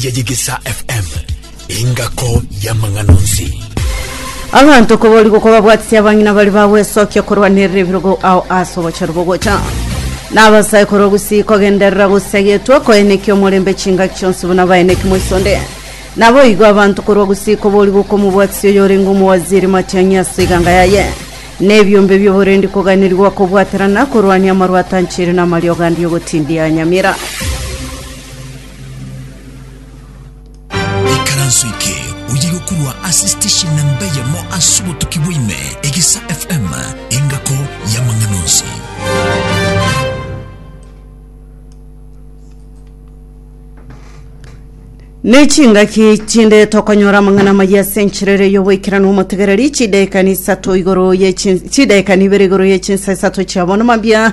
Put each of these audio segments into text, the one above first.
ya Yegesa FM, engako y'amang'ana onsi. abanto koborigwa kobabwatisi abang'ina bari bagwesokia korwanerera ebirogo ao ase obochero bogocha na abasae korwa gusii kogenderera gosagetwa koenekia omorembe chingaki chionsi buna baeneki moisonde naboigo abanto korwa gusii koborigwa komobwatisi oyorenge omowaziri matiang'i ase eganga yaye nebiombe bioborendi koganirigwa kobwaterana korwania amarwatanchiri na amariogo andi ogotindia nyamira Ikaranso eke oye gokorwa ase station namba eyemo ase obotuki bwaime egisa fm engako y'amang'ana onsi nechingaki chinde tokonyora amang'ana maya ase enchirere y'oboikeranu omotegereri chidaekani isato igoro ye chin- chidaekani ibere igoro ye chinsa isato chiabono mambia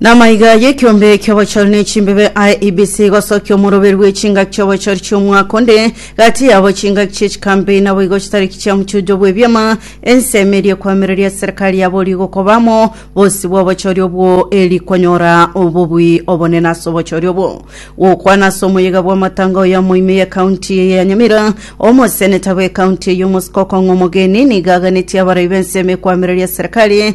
Namaiga y'ekiombe ki'obochori ne chimbebe IEBC igosokia omoroberu bw'echingaki chi'obochori chi'omwaka onde gati yabo chingaki chi'echikambi naboigo chitariki chia mochujo bw'ebiama ensemo eria ekwamereria ase serikali ya borio igokoba amo bosio bw'obochori obwo eri konyora obobui obonene ase obochori obwo gokwana ase omoyega bw'amatanga oyo amoime y'ekaunti eye ya Nyamira omoseneta bw'ekaunti eye omosiko okong'a omogeni niga aganetie abarai b'ensemo ekwamereria serikali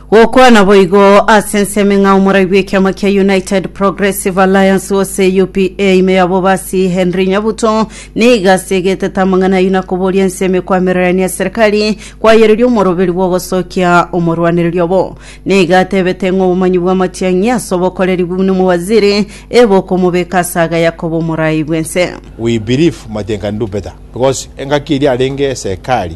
Gokwana boigo ase ensemo ng'a omorai bw'ekiama kia United Progressive Alliance gose UPA ime ya bobasi Henry Nyabuto niga ase egetete amang'ana ayio na koboria ensemo ekwamererania eserikari kwayereria omoroberi bw'ogosokia omorwanereria obo. Niga atebete ng'a obomanyi bw'amatiang'i ase obokoreri buna omowaziri ebokomobeka ase agaya koba omorai bw'ense. We believe Matiang'i can do better because engaki eria arenge esekari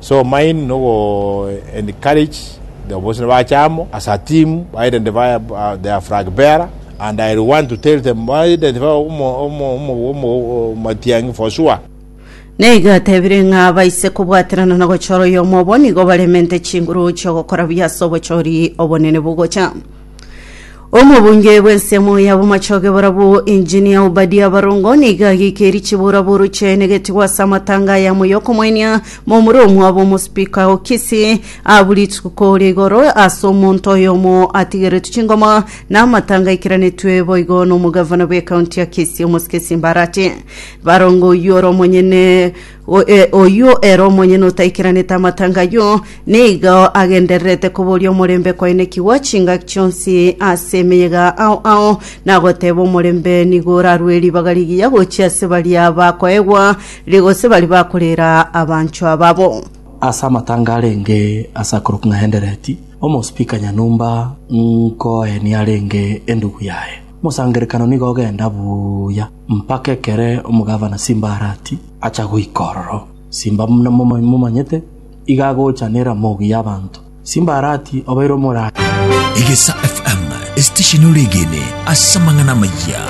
So mind no go encourage the obosina bache amo as a team ba identify their flag bearer and I want to tell them ba identify omo omo omo omo omatiangi for sure. Na igo atebire ng'a abaise kobwaterana na gochora oyomo obo nigo baremente chinguru chi'ogokora buya ase obochori obonene bogocha. Omobunge bw'ensemo y'abomachoge barabwo Engineer Obadia Barongo nigo ageikirie chiboraboro chiaye negetigwa ase amatanga aya amo y'okomoenia momura omwabo omospeaker o Kisii abwo rituko ria igoro ase omonto oyomo atigeretwe chingoma na amatanga aikeranetie boigo n'omogavana bw'ecounty ya Kisii Omosike Simbarati Barongo oyio ore omonyene oyio ere omonyene otaikeranete amatanga ayio, nigo agendererete koboria omorembe kwaenekigwa chingaki chionsi ase emeyega ao ao, na goteeba omorembe nigo orarue ribaga rigiya gochia ase baria bakoegwa, gose baria bakorera abanchwa babo. Ase amatanga arenge ase akorokwa ng'a Endereti, omosipika nyanyomba nkoe niarenge endugu yaye. Mosangererekano nigo ogenda buya. Mpaka ekero omogavana Simbarati acha goika ororo, simba buna momanyete, iga agocha neramogi y'abanto. Simbarati obaire omoraai. Egesaa FM, esitesheni ore egeene ase amang'ana amayia.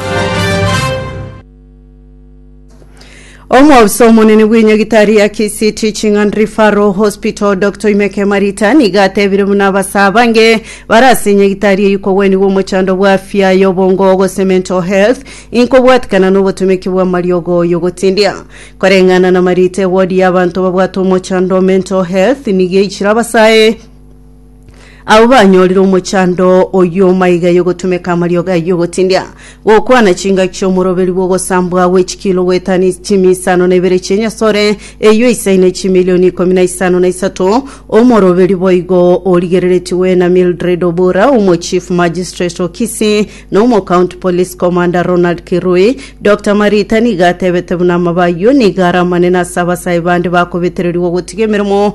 Omwofisa omonene bw'enyagitari ya Kisii Teaching and Referral Hospital, Doctor Imeke Marita, nigo atebire buna abase abange bare ase enyagitari eyio kogwenigwa omochando bw'afya y'obongo, gose mental health, inkobwatikana n'obotomeki bw'amariogo y'ogotindia. Koreng'ana na Marita, ewodi y'abanto babwate omochando, mental health, nigo eichire abase aye, Abwo banyorire omochando oyio maiga y'ogotumeka amariogo ayio ogotindia, gokwana chingaki chi'omoroberi bw'ogosambwa gwe chikilo goetani chimi isano na ibere chi'enyasore eyio eisaine chimilioni ikomi na isano na isato. Omoroberi boigo origereretigwe na Mildred Obura, omo Chief Magistrate o Kisii, na omo County Police Commander Ronald Kirui. Dr. Marita nigo atebete buna amaba ayio nigo are amanene ase abasae bande bakobetererigwa gotiga emeremo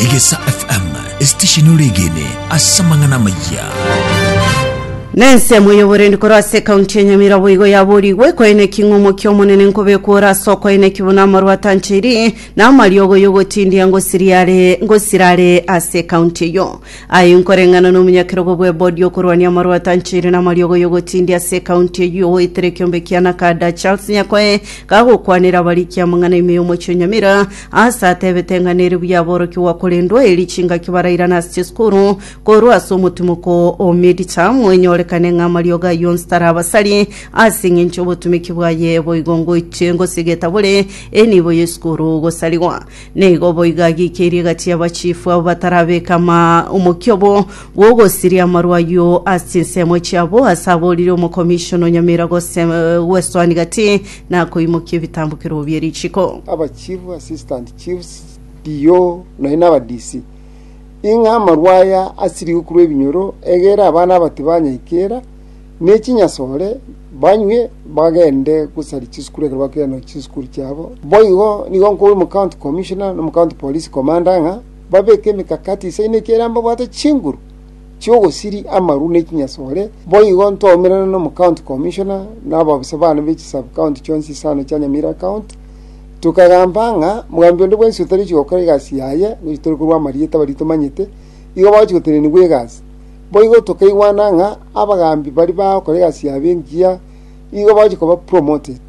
Egesa FM, esitesheni ore egene ase amang'ana amayia. Na ensemo y'oborendi korwa ase ekaunti ya Nyamira boigo yaboorigwe koeneki ng'a omokia omonene nkobekwa ore ase okoeneki buna amarwa atancheiri na amariogo y'ogotindia ngosiri are ngosira are ase ekaunti eyo. Aye nkoreng'ana n'omonyakerogo bw'ebodi okorwania amarwa atancheiri na amariogo y'ogotindia ase ekaunti eyo oetire ekiombe kia Nakada Charles Nyakoe Gagokwanera abarikia amang'ana ime y'omochie o Nyamira, aase atebete ng'a nere buya aborokigwa korendwa eeri chingaki barairane ase chisukuru korwa ase omotimoko o midterm, enyorekane ng'a amariogo ayio onsi tarabasari ase eng'encho y'obotumeki bwaye boigo ngoiche ngose getabore enibo y'esukuru gosarigwa. Nigo boigo agiikeirie gati y'abachifu abwo batarabeka omokiobo bw'ogosiria amarwa ayio ase chinsemo chiabo, ase aboorire omokomishona o Nyamira gwesoania gati na koimokia ebitambokero bie richiko. abachief, assistant chiefs, DO, nonya na aba DC, ing'a amarwa aya asirigwe korwa ebinyoro, egere abana abatibanyaikera, ne chinyasore, banywe, bagende gosari chisukuru ekero bakeire no chisukuru chiabo. Boigo nigo nkoigwa omocounty commissioner na omocounty police commander ng'a babeke emekakati isaino ekiagera mbabwate chinguru chi'ogosiri amaru ne chinyasore. Boigo ntwaumerana na omocounty commissioner na ababisa bane be chisubcounty chionsi isano chia Nyamira county, tokagamba ng'a mogambi onde bwensi otariochi gokora egasi yaye, gochia tore korwa amarieta baria tomanyete, igo bagochia gotenenigwa egasi. Boigo tokaigwana ng'a abagaambi baria bagokora egasi yabo engiya nigo bagochia koba promoted.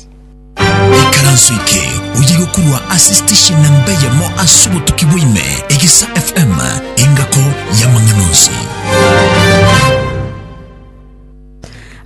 Ekaranso eke oyegokurwa ase station namba eyemo ase obotuki bwa ime, Egesa FM, engako y'amang'ana onsi.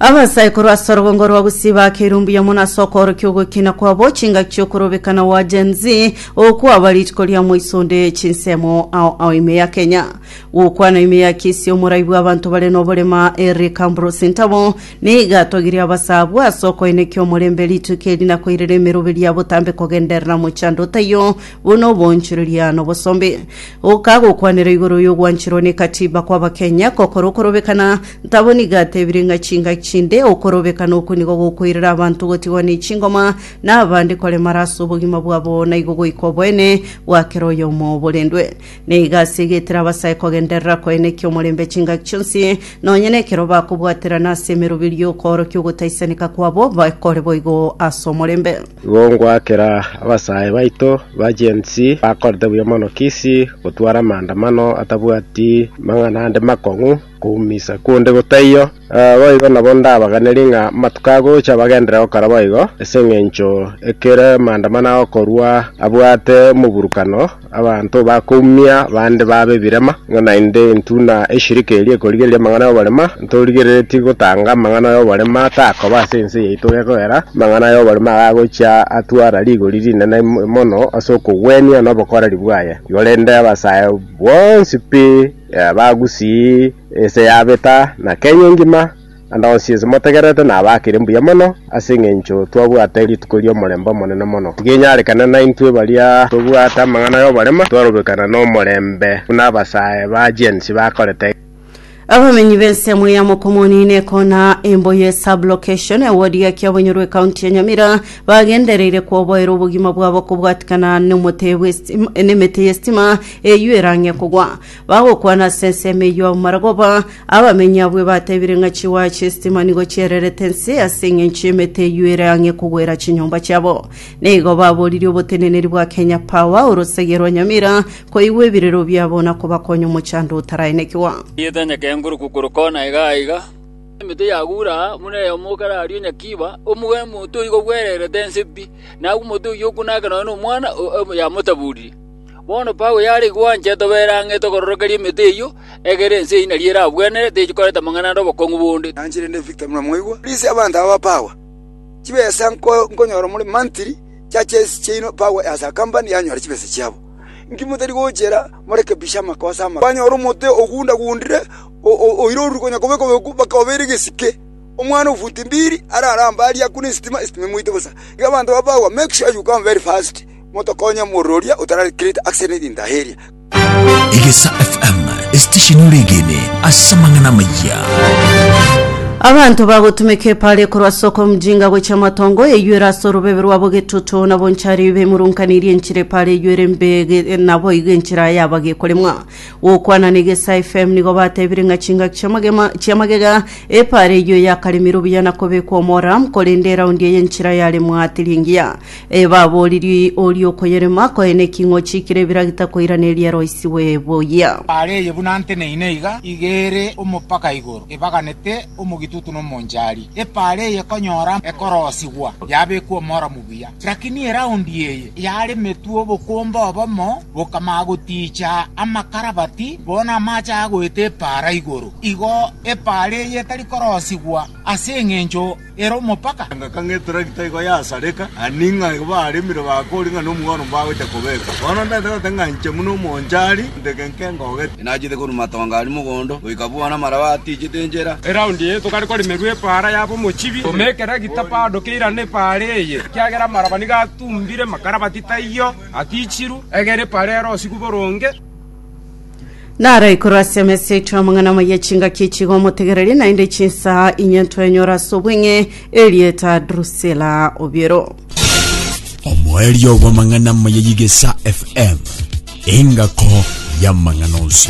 Abasaikoro ase orogongo rwa Gusii bakeirwe mbuya mono ase okoorokia ogokina kwabo chingaki chi'okorobeka na gwa Gen Z okwaba rituko ria moiso onde chinsemo ao ao ime ya Kenya. Gokwana ime ya Kisii omorai bw'abanto bare noborema Eric Ambrose Ntabo nigo atogirie abasaa abwo ase okoenekia omorembe rituko eri na koirera emeroberi ya botambe kogenderera mochando otaiyo buna oboonchoreria na obosombe. Oka gokwanera igoro y'ogwancherwa ne Katiba kw'Abakenya gokora okorobekana Tabo nigo atebire ng'a chingaki chinde okorobeka nokonigo gokoirera abanto gotigwa ne chingoma, na abande koremara ase obogima bwabo na igo goika oboene bwa kera oyomo borendwe. Na igo ase egetera abasae kogenderera koenekia omorembe chingaki chionsi, nonye nekero bakobwaterana ase emeroberio y'okoorokia ogotaisaneka kwabo bakore boigo ase omorembe. Igo ngoakera abasae baito ba Gen Z bakorete buya mono kisi gotwara amaandamano atabwati mang'ana ande makong'u, Koumisa konde gotaiyo, naboigo nabo ndabaganeri ng'a amatuko agocha bagenderere gokora boigo, ase engencho ekero Maandamano agokorwa abwate omoburukano, abanto bakoumia bande babe ebirema, ng'a naende intwe na eshirika eria ekorigereria amang'ana y'oborema, ntorigereretie gotanga amang'ana y'oborema takoba ase ense yaito gekogera amang'ana y'oborema aya agocha atwara rigori rinene mono ase okogwenia nobokoreri bwaye. Igo rende abasae bonsi pi. Bagusii ense yabeta, na Kenya engima, ande onsi ense motegererete nabakire mbuya mono, ase engencho twabwate rituko ri'omorembe omonene mono. Tigenyarekana naintwe baria tobwate amang'ana y'oborema, twarobekana nomorembe buna abasae ba Agensi bakorete. Abamenyi b'ensemo ya Mokomoni na Ekona Emboye Sub-Location, ewodi ya Kiabonyorwa Ekaunti ya Nyamira, bagendereire koboera obogima bwabo kobwatikana n'omote bw'estima, n'emete y'estima, eyio erange kogwa, bagokwana ase ensemo eyio amarogoba. Abamenyi abwo batebirie ng'a chiwaya chi'esitima nigo chiererete inse ase engencho y'emete eyio ere ang'e kogwera chinyomba chiabo. Nigo baboririe oboteneneri bwa Kenya Power orosagia rwa Nyamira koigwa ebirero biabo na kobakonya omochando otaraenekigwa. Erieta enyakenguruku korwa kona iga na iga, emete yagura aa buna eyomo okare aria onyakiiba, omoga omoto igo bwererete inse pi, na agwo omote oyio okwo nake nonye nomwana o- o- yamotaburirie. Bono Paulo yare igwo ancha etobe ere ang'e etogororokeria emete eyio, egere ense eyio nario eragwenere, techikoreta amang'ana ande obokong'u bonde. Nanche rende Victor buna mwaigwa, risia abanto aba ba power, chibesa nkonyora more mantiri chia chesi chiaino power as a company yanyora chibesa chiabo. Inki motari gochera morekebishe amakosa amaka. Kwanyora omote ogunda gundire oire oruri konya kobeka obeku baka obeire gesike. Omwana o futi mbiri arare ambari akune esitima, esitima emoite bosa. Iga abanto ba power make sure you come very fast. Motokonye omorwori oria otarare Krete ase erinda eria. Egesa FM esitesheni ore egene ase amang'ana amayia. Abanto bagotumeka epare korwa ase okomjinga gochia amatongo eyuere ase orobebe rwabo getutu nabo nchari bemurunkaniri enchira epare eyuere mbe ge- nabo igo enchira yaba gekoremwa gokwana na egesa fm nigo batebire ng'a chingaki chia magema chia magega epare eyio yakaremirwe buya na kobekwa omora korende eraundi eye enchira yaremwa teri engiya Ee, babooriri oria okoyerema, koyene eking'ochi kire biragita koiraneria eroisigwe boyia. Are eye buna nteneine iga, iga ere omopaka igoro, ebaganete omogitutu nomonchari. Epaara eye ekonyora ekorosigwa, yabekwa omoro mobuya. Rakini eraundi eye yaremetwe obokomba obomo, bokamaa gotiicha amakarabati, bono amache agoeta epaara igoro. Igo epaara eye etari korosigwa ase engencho. ere omopaka. Ngaka ng'a etragita igo yasareka, ani ng'a igo baremire bakori ng'a nomogwaro mbagochia kobeka. Bono ntaete goteba ng'a inche buna omonchari, ndege nke ngogete. Inachete korwa matongo aria mogondo goika buna amaraba atiichete enchera. Eraundi eye tokare koremerwa epaara yaba omochibi, tome ekeragita bado keirane epaara eye, ekiagera amaraba nigo atumbire makarabati taiyo atiichirwe, egere epaara erosigwe boronge. naro ikoro ase emesa yaito amang'ana amaya chingaki echigo omotegereri naende chinsa inye ntwenyora ase obweng'e erieta drusela obiero omoerio bw'amang'ana amaya yigesa fm engako y'amang'ana onsi